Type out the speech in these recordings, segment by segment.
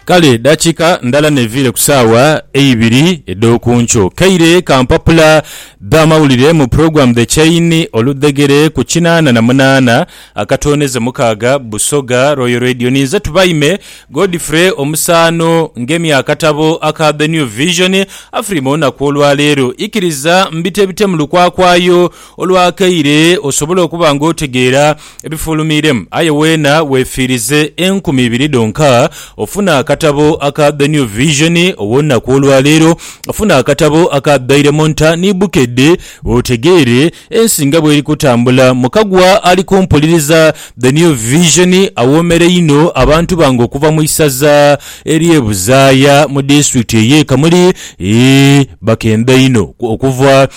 Kale dakiika ndala neviire ku saawa eibiri edhokunkyo, kaire ka mpapula dha mawulire mu program The Chain oludhegere ku kinaana na munaana akatooneze mukaaga Busoga Royal Radio. Ninze Tubaime Godfrey omusaano ngemye akatabo aka The New Vision Afrima olunaku olwaleero. Ikiriza mbitebite mu lukwakwayo. Olwakaire osobole okuba ng'otegeera ebifulumiiremu, aye weena weefiirize enkumi ibiri dhonka ofune akatabo aka The New Vision ow'olunaku olwaleero. Funa akatabo aka Daily Monitor ni Bukedde otegeere ensi nga bw'eri kutambula. Mukagwa ali kumpuliriza The New Vision awoomera inho abantu bange okuva mu isaza ery'e Buzaaya mu disitulikiti ey'e Kamuli. Eeh, bakeenda inho okuva.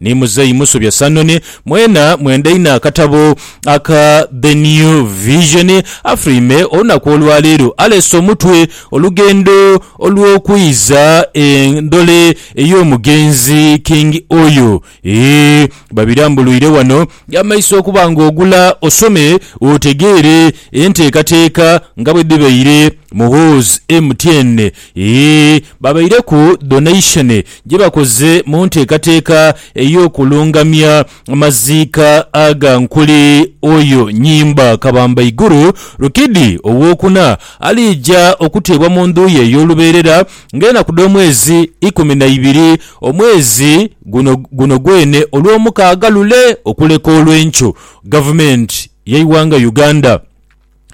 Ni muzeeyi Musobya Sanon, mwena mwenda inho akatabo aka The New Vision, afulwime olunaku olwaleero aleese omutwe Olugendo olw'okwiiza endhole ey'omugenzi King Oyo. Eeh babirambuluire wano yamaiso okuba nga ogula osome otegeere enteekateeka nga bwedhibaire. Muhoozi MTN Yee, babaireku donation gye bakoze mu nteekateeka ey'okulungamya amaziika aga Nkuli Oyo Nyimba Kabambaiguru Rukidi Owokuna aliija okuteebwa mu ndhu ye ey'olubeerera ng'enaku dh'omwezi ikumi na ibiri omwezi guno guno gwene Olwomukaaga lule okuleka olw'enkyo Gavumenti y'eighanga Uganda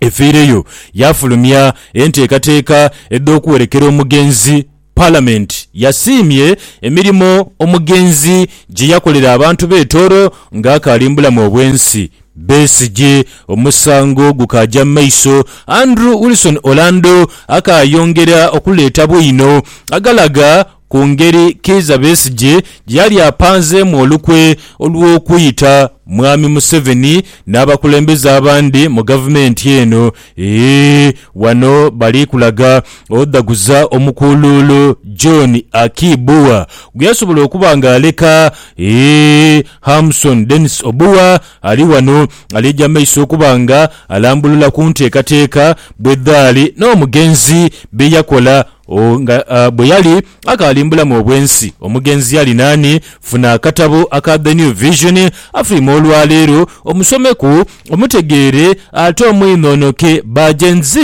efiireyo yaafulumya enteekateeka edh'okuwerekera omugenzi. Palamenti yasiimye emirimo omugenzi gye yakolera abantu b'e Tooro ng'akaali mu bulamu obw'ensi. Besigye omusango gukaaja mu maiso, Andrew Wilson Orlando akaayongera okuleeta bwino agalaga ku ngeri Kiiza Besigye gye yali apanzeemu olukwe olw'okuyita Mwami Museveni n'abakulembeze abandi mu Gavumenti eno. Eeh! Wano bali kulaga odhaguza omukuuluulu John Aki Bua gwe yasobola okuba nga aleka. Eeh! Hamson Denis Obua ali wano aliija mu maiso okuba nga alambulula ku nteekateeka bwedhaali n'omugenzi bye yakola. O, nga bwe yali akaali mu bulamu obw'ensi, omugenzi yali naani? Funa akatabo aka The New Vision, afirime olwa leero, omusomeku, omutegeere, ate omwinhoonoke. Ba Gen Z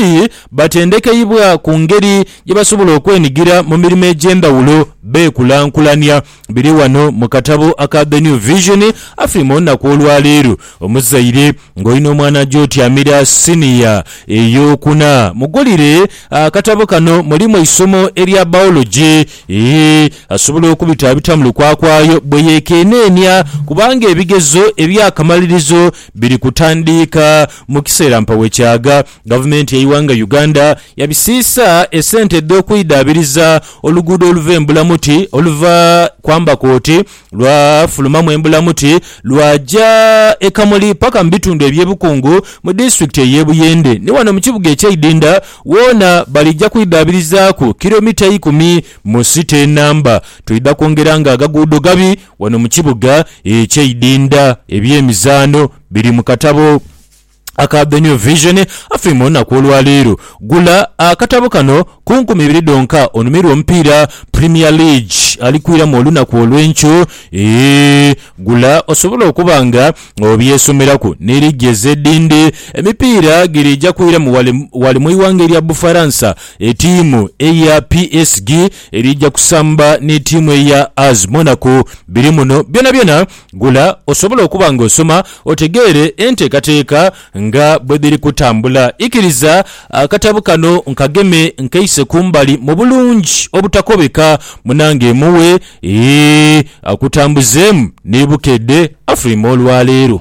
batendekeibwa ku ngeri gye basobola okwenigira mu mirimo egy'endhawulo beekulankulania. Biri ghano mu katabo aka The New Vision, Afi mu Naku olwa leero. Omuzaire ng'olina omwana aja otyamira siniya ey'okuna, mugulire akatabo kano. Mulimu eisomo erya biology, ee, asobola okubitaabita mu lukwakwayo bwe yeekeneenia, kubanga ebigezo eby'akamalirizo biri kutandiika mu kiseera mpa we kyagha. Gavumenti y'eighanga Uganda yabisiisa esente edh'okwidhaabiriza oluguudo oluva e Mbulamuti oluva kwambaku oti lwafulumamu e Mbulamuti lwaja e Kamuli paka mu bitundu eby'e Bukungu mu disitulikiti ey'e Buyende. Ni wano mu kibuga eky'e Idinda woona balija kwidhaabirizaaku kiromita ikumi mu site enamba. Twidha kwongera nga agaguudo gabi wano mu kibuga eky'e Idinda. Eby'emizaano biri mu katabo. aka The New Vision afe mu lunaku olwaleero. Gula akatabo kano ku nkumi ibiri dhonka onumirwe omupiira Premier League alikwiramu olunaku olw'enkyo. Eeh gula osobole okuba nga obyesomeraku ni liigi ez'edhindi. Emipiira giriija kwiramu wale wale mu ighanga erya Bufaransa etiimu eya PSG eriija kusamba ni tiimu eya As Monaco biri muno byonabyona. Gula osobole okuba nga osoma otegeere enteekateeka nga bwe dhiri kutambula. Ikiriza akatabo kano nkageme nkeise ku mbali mu bulungi obutakobeka munange mughe akutambuzeemu ni Bukedde Afrima olwaleero.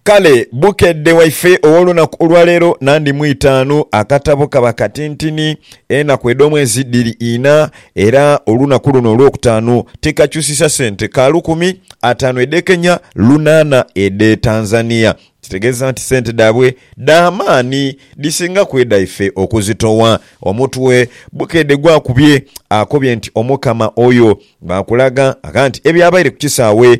Kale Bukedde waife ow'olunaku olwa leero nandi mu itaanu. Akatabo kaba katintini, enaku edh'omwezi dhiri ina era olunaku luno olwokutaanu tikakyusisa sente ka lukumi, ataanu edh'e Kenya, lunaana edh'e Tanzania. Kitegeeza nti sente dhaabwe dha maani dhisinga ku edhaife okuzitowa. Omutwe Bukedde gwakubye akobye nti Omukama oyo bwakulaga agha nti ebyabaire ku kisaawe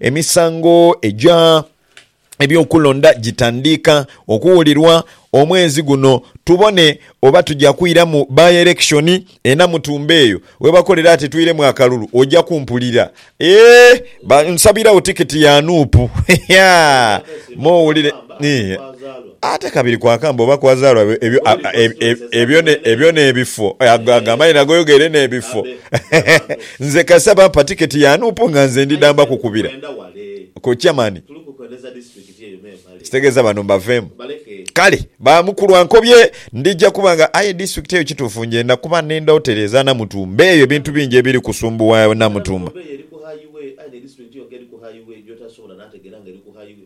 Emisango egya eby'okulonda gitandiika okuwulirwa omwezi guno tubone oba tuja kwira mu by-election e Namutumba eyo webakolera ati twiremu akalulu oja kumpulira eeh nsabirawo ticket ya Nup yaa m'owulire eeh. Ate kabiri kwakamba oba kwazaalwa ebyo, ebyo, ebyo n'ebifo. Agamba nti, Nagoyoga ere n'ebifo. Nze kasita bampa tiketi ya Nup nga nze ndi damba kukubira ku Chairman. Ekitegeeza bano mbaveemu. Kale ba mukulu ankobye, ndija kuba nga aye disitulikiti eyo kituufu njenda kuba n'enda woteri eza Namutumba eyo ebintu bingi ebiri kusumbuwa Namutumba.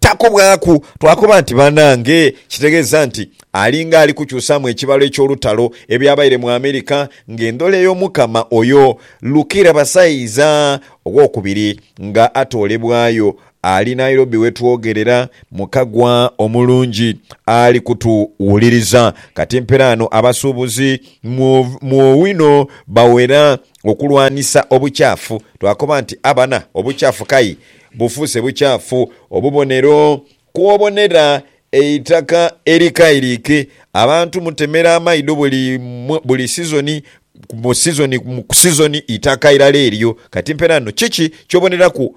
Takubwaku, twakoba nti, Banange, kitegeeza nti alinga ali kukyusaamu ekibalo eky'olutalo ebyabaire mu Amerika ng'endhola ey'Omukama oyo Lukira Basaiza Owokubiri nga atoolebwayo ali Nairobi we twogerera mu kagwa omulungi ali kutuwuliriza. Kati mperaano abasuubuzi mu mu owino bawera okulwanisa obukyafu. Twakoba nti, Abana, obukyafu kayi Bufuuse bukyafu, obubonero kw'obonera eitaka erikairiike. Abantu mutemera amaidho buli buli sizoni, mu sizoni ku sizoni eitaka irala eryo. Kati mpeera no kiki ky'oboneraku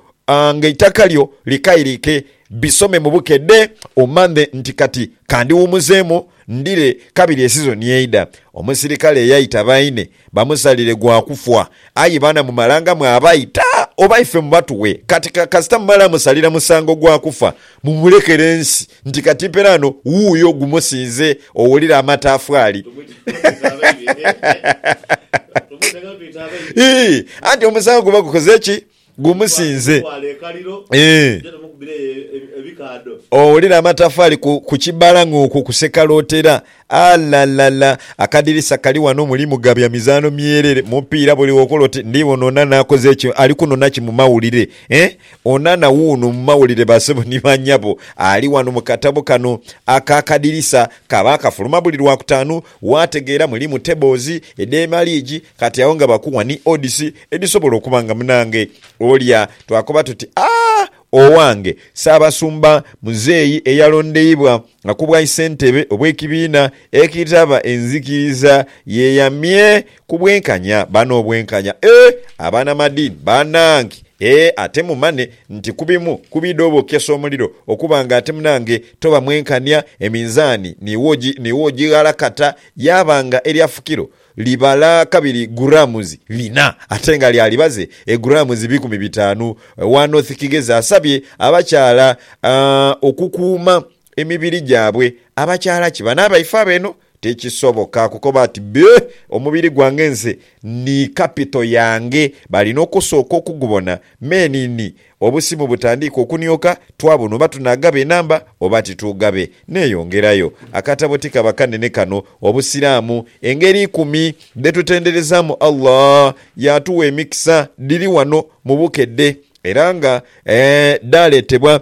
nga eitaka lyo likairiike. Bisome mu bukedhe omanye nti kati ka ndiwumuzeemu ndire kabiri esizoni eidha. Omusirikale yaita baine Bamusalire gwa kufwa. Aye baana mumalangamu abaita oba ife mubatughe kati kasita mumala musalira musango gwa kufa mumulekere ensi nti kati mperaano wuuyo gumusinze owulira amatafwaali ii anti omusango guba gukoze ki? Gumusinze. Owulire amatafaali ku kibala ng'okwo kuseka lwotera. Alalala! Akadirisa kali wano mulimu gabya mizaano myerere, mupiira buli wokola oti ndibona Onana akoze kino, ali kunona ki mu mawulire? Eh? Onana wuuno mu mawulire basebo ni banyabo. Ali wano mu katabo kano ak'akadirisa. Kaba kafuluma buli Lwakutaanu Waategeera mulimu tables edh'ema liigi kati agho nga bakuwa ni odds edhisobola okuba nga munange olya twakoba tuti aah owange Ssaabasumba muzeeyi eyalondeibwa nga ku bwaisentebe obw'ekibiina ekitaba enzikiriza yeeyamye Ku bwenkanya bano obwenkanya ee abanamadiini banange ee ate mumane nti ku bimu ku bidha obokesa omuliro okuba nga ate munange toba mwenkania eminzaani niwo ogighalakata yaaba nga erya fukiro libala kabiri grams lina ate nga lya libaze e grams bikumi bitaanu Wanothikighezi asabye abakyala okukuuma emibiri gyabwe. Abakyaala ki banaaba ife ab'eno? Tikisoboka kukoba ati, Bee, omubiri gwange nze ni kapito yange. Baalina okusooka okugubona. Me ni, ni, obusimu butandiika okunioka, twabona oba tunaagaba enamba oba tituugabe. Neeyongerayo. Akatabo tikaba kanene kano, Obusiraamu, Engeri Ikumi dhe Tutenderezaamu Allah. Yaatuwa emikisa. Dhiri wano mu bukedde. Era nga, ee, dhaaleetebwa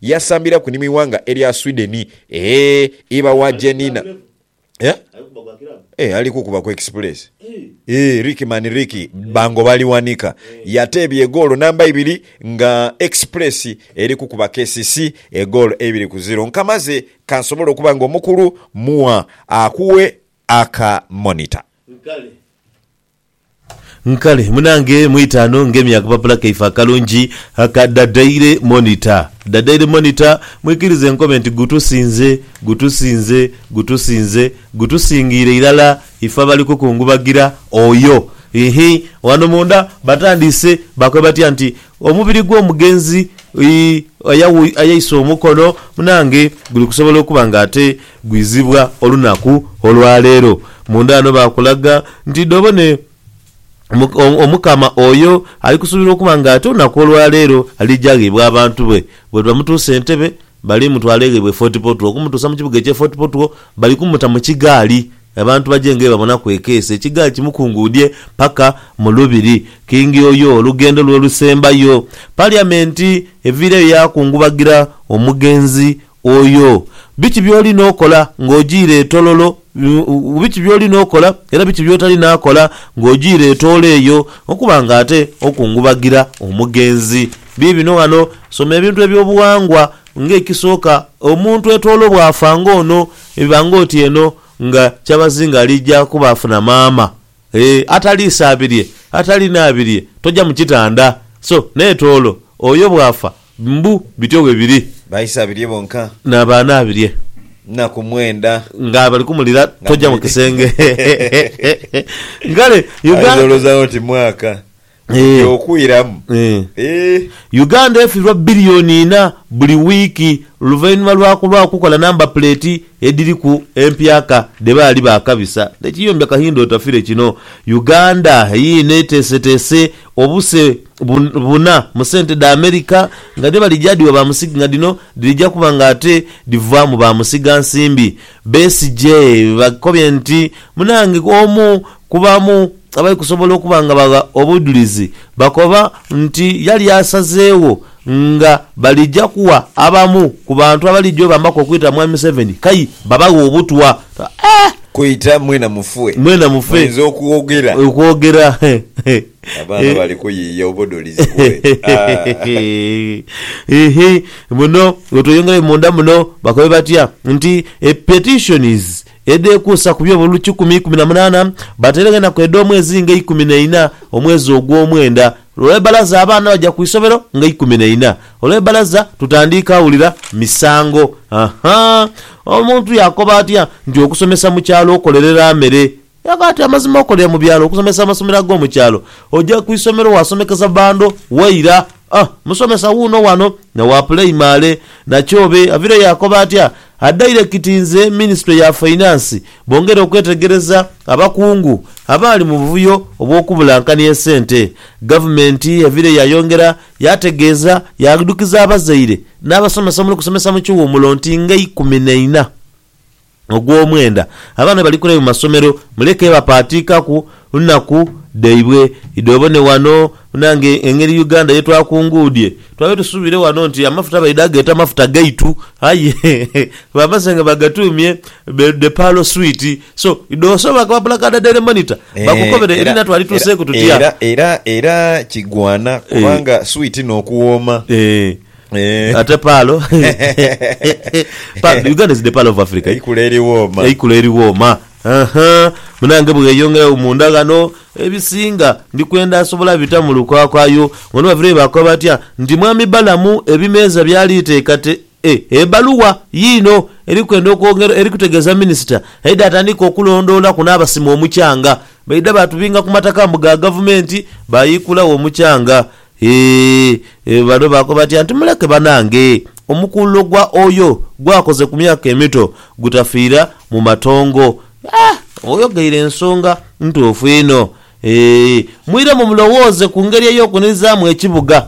Yasambira ku ni mu ighanga erya Sweden. Eeh iba wa je Nina. Eeh ali kukuba ku express. Eeh Ricky man Ricky bango baliwanika. Yateebya egoolo namba ibiri nga Express eri kukuba KCC egoolo eibiri ku ziro. Nkamaze kansobole okuba nga omukulu mugha akughe aka monitor. Nkale munange mwitaano ngemi akapapula kaife akalungi aka Da Daily Monitor Da Daily Monitor mwikirize nkobe nti gutusinze gutusinze gutusinze gutusingiire irala ife abali kukungubagira oyo iihh wano munda batandiise bakobe batya nti Omubiri gw'omugenzi ayaisa omukono munange guli kusobola okuba nga ate gwizibwa olunaku olwaleero. Munda ghano baakulaga nti dhoobo ne Omukama oyo ali kusuubirwa okuba nga ate olunaku olwaleero aliija ghaibwe abantu be. Bwe bamutuusa Entebbe, bali mutwala ghaibwe Fort Portal. Okumutuusa mu kibuga eky'e Fort Portal, bali kumuta mu kigaali. Abantu baje nga bwebabonaku ekeeso ekigaa kimukunguudhie paka mu Lubiri. Kingi oyo olugendo lwe olusembayo. Paliamenti eviireyo yaakungubagira omugenzi oyo. Biki by'oli n'okola ng'ojiire etololo, biki by'oli n'okola era biki by'otali naakola ng'ojiire etoolo eyo okuba nga ate okungubagira omugenzi? Biibino ghano. Soma ebintu eby'obughangwa Ng'ekisooka, omuntu etwolo bw'afa ng'ono biba ng'oti eno nga kyabazinga aliija kuba afuna maama. Ee, ataliisaabirye, atalinaabirye toja mu kitanda. So n'etwolo oyo bw'afa mbu bityo bwe biri. Baisaabirye bonka. N'abaanaabirye. Nnaku mwenda. Nga bali kumulira toja mu kisenge. Kale Uganda. Aidoloza oti mwaka. Eeh. Okwiramu eeh. Uganda efirwa billioni inha buli wiiki luvainhuma lwa kulwagho kukola namba puleeti edhiriku empyaka dhe baali baakabisa ne kiyombya kahinda otafire kino. Uganda yiino eteeseteese obuse buna mu sente dha America nga dhe balija dhiwa ba musig nga dhino dhirija kuba nga ate dhivaamu ba musiga nsimbi. Besigye bakobye nti munange omu Kubaamu abali kusobola okuba nga bagha obudhulizi bakoba nti yali asazeegho nga balija kuwa abamu ku bantu abalija obambaku okwita Mwami Museveni kai babaghe obutwa. Kwita mwena mufe. Mwena mufe. Muinza okwogera. Okwogera. Abaana bali kuyiiya obudhulizi bwe. Iihii. Muno wetweyongerayo munda muno bakobe batya nti a petition is. Edh'ekuusa ku byo buli kikumi ikumi na munaana, bateregenaku edh'omwezi nga eikumi na ina, omwezi ogw'omwenda. Olw'e balaza abaana baja ku isobero nga ikumi na ina. Olw'e balaza tutandiika awulira misango. Aha! Omuntu yaakoba atya nti okusomesa mu kyalo okolerera mere? Yakoba ati amazima okolera mu byalo, okusomesa amasomero ag'omu kyalo. Oja ku isomero waasomekeza bando, waira. A Musomesa wuuno wano na wa puleimale. Nakyobe avire yaakoba atya, A dairekiti nze Minisitule ya Fainansi bongere okwetegereza abakungu abaali mu buvuyo obw'okubulankania esente. Gavumenti evire yaayongera yaategeeza yaadhukiza abazaire n'abasomesa omuli okusomesa mu kiwummulo nti ng'eikumi na ina. ogw'omwenda, abaana bali kule mu masomero muleke bapaatiikaku nnaku dhaibwe. Idho obone wano munange engeri Uganda ye twakunguudhie. Twali tusuubire wano nti amafuta baidha geeta mafuta gaitu aye bamaze nga bagatuumye The Pearl Sweet. So idho osobola koba pulakaadha Daily Monitor bakukobere ebinha twali tuuseeku tutya. Era, era, era kigwana kubanga sweet n'okuwooma Eh. Ate paalo Paalo, Uganda is the pearl of Africa. eh? Eikula eri wooma. eikula eri wooma Aha. munange bweyongerayo munda ghano ebisinga ndikwenda asobola bita mu lukwakwayo ghona bavireyo bakoba batya nti mwami Balamu ebimeeza byali teekate e ebaluwa yiino eri kwenda okwongera eri kutegeeza minisita aidha atandike okulondoolaku n'abasima omukyanga baidha baatubinga ku mataka mbu ga gavumenti baayiikulagho omukyanga Hee, bano baakoba bati anti muleke banange, omukuululo gwa oyo gwakoze ku myaka emito gutafiira mu matongo. Aah! Oyogeire ensonga ntuufu inho. Hee, mwiremu mulowooze ku ngeri ey'okunirizaamu ekibuga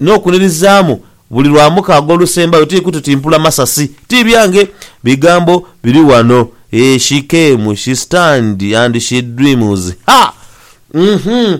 n'okunirizaamu buli Lwamukaaga olusembayo tiri kututimpula masasi. Ti byange bigambo biri wano. Hee, she came, she stand and she dreams. Ha! Uhmm.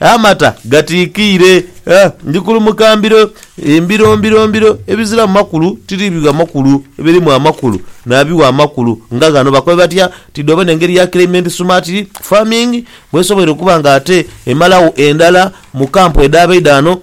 Amata gatiikiire, ndi kulumuka mbiro, mbiro, mbiro, mbiro, ebiziramu makulu tiri bigha makulu, ebirimu amakulu nabigha amakulu nga ghano. Bakobe batya? Tidhi obona engeri ya climate smart farming bwesoboire okuba nga ate emalagho endhala mu camp edhabaidha ghano?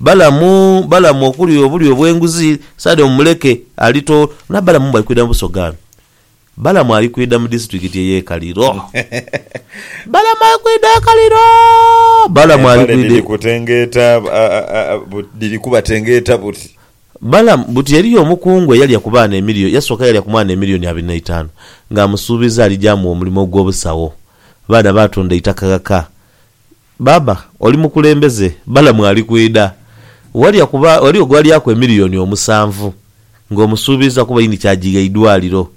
Balamu, Balamu okulya obulyo obw'enguzi, Sadomu muleke, ali to. Nga Balamu bali kwidha mu Busoga ghano. Balamu ali kwidha mu disiturikiti ey'e Kaliro. Balamu ali kwidha e Kaliro. Balamu ali Empale kwidha dhiri e. kutengeeta a, a, a, a, but- dhiri kubatengeeta buti. Balamu, Buti eriyo omukungu eyalya ku baana emilioni, yasooka yalya ku mwana emilioni abiri n'eitaanu, ng'amusuubiza alija amugha omulimo ogw'obusagho. Abaana baatunda eitaka ghaka. Baaba, oli mukulembeze, Balamu ali kwidha. Walya kuba ghaligho gw'alyaku emiliyoni omusanvu, ng'omusuubiiza kuba ini ky'agigha eidwaliro.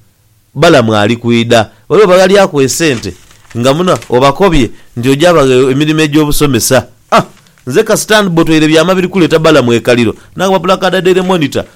Balamu ali kwidha. Ghaligho baghalyaku esente nga muno obakobye nti oja bagha emirimo egy'obusomesa. Ah! Nze kasita ndibotweire byama biri kuleeta Balamu ekaliro, nange bapulakadha Daily Monitor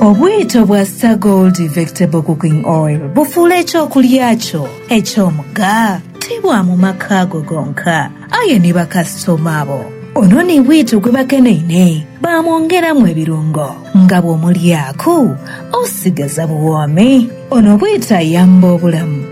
Obwito bwa Star Gold Vegetable Cooking Oil bufuula eky'okulya kyo eky'omugha ti bwa mu maka go gonka, aye ni bakasitoma bo. Ono ni bwito gwe bakeneine baamwongeramu ebirungo nga bw'omulyaku osigaza buwoomi. Ono bwito ayamba obulamu.